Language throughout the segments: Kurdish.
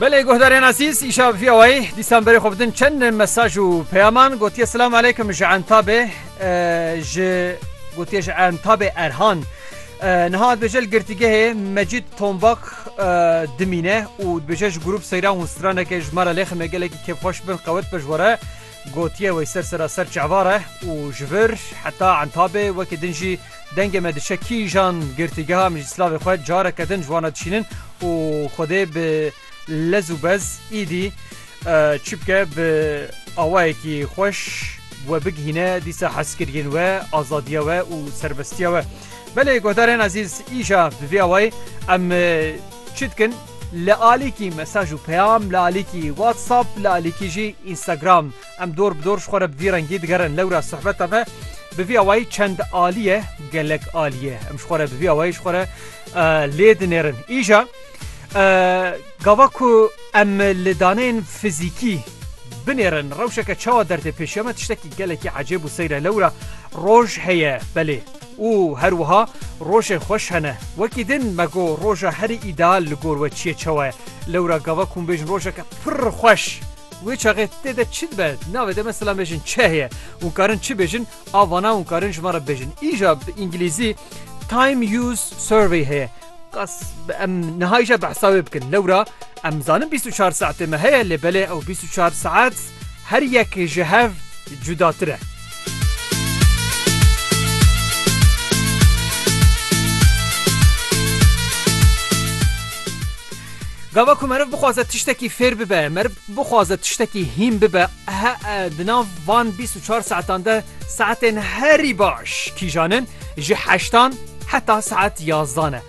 Belê guhdarên azîz îşa vî awayî dîsan berê xwe bidin çend mesaj û peyaman gotiye silam aleykum ji entabê ji gotiye ji entabê erhan. Niha dibêje li girtîgehê mecîd tombak dimîne û dibêje ji grûp seyran û straneke ji me re lêxime gelekî kêfxweş bin qewet be ji were gotiye wey ser sera ser çavare û ji vir heta entabê wekî din jî Dengê me diçe kîjan girtîgeha em jî silavê xwe careke din ji wan re dişînin û Xwedê bi lez û bez îdî çi bike bi awayekî xweş we bigihîne dîsa hezkiriyên we, azadiya we û serbestiya we. Belê guhdarên ezîz îja bi vî awayî em çi dikin li alîkî mesaj û peyam li alîkî WhatsApp li alîkî jî Instagram Em dor bi dor ji xwe re bi vî rengî digerin lewra sohbeta me bi vî awayî çend alî ye, gelek alî ye. Em ji xwe re bi vî awayî ji xwe re lê dinêrin. Îja gava ku em li daneyên fizîkî binêrin rewşeke çawa derdê pêşiya me tiştekî gelekî ecêb û seyre lewra roj heye belê û her wiha rojên xweş hene. Wekî din me got roja herî îdeal li gor we çi ye çawa ye. Lewra gava ku hûn bêjin rojeke pir xweş Wê çaxê tê de çi dibe? Navê de mesela mêjin çeh ye. Hûn karin çi bêjin? A vana hûn karin ji me re bêjin. Îja bi îngîlîzî Time Use Survey heye. Qas em niha îja bi hesabê bikin. Lewra em zanin bîst û çar saetê me heye lê belê ew bîst û çar saet her yek ji hev cudatir e. Gava ku meriv bixwaze tiştekî fêr bibe, meriv bixwaze tiştekî hîn bibe, di nav van 24 saetan de saetên herî baş kîjan in ji heştan heta saet yazdan e.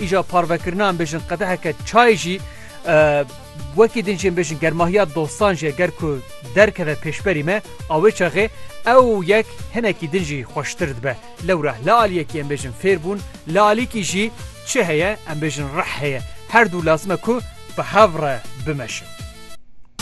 Îja parvekirina em bêjin qedeheke çayê jî wekî din jî em bêjin germahiya dostan jî ger ku derkeve pêşberî me a wê çaxê ew yek hinekî din jî xweştir dibe. Lewra li aliyekî em bêjin fêr bûn, li alîkî jî çi heye em bêjin rih heye. Her du lazim e ku bi hev re bimeşin.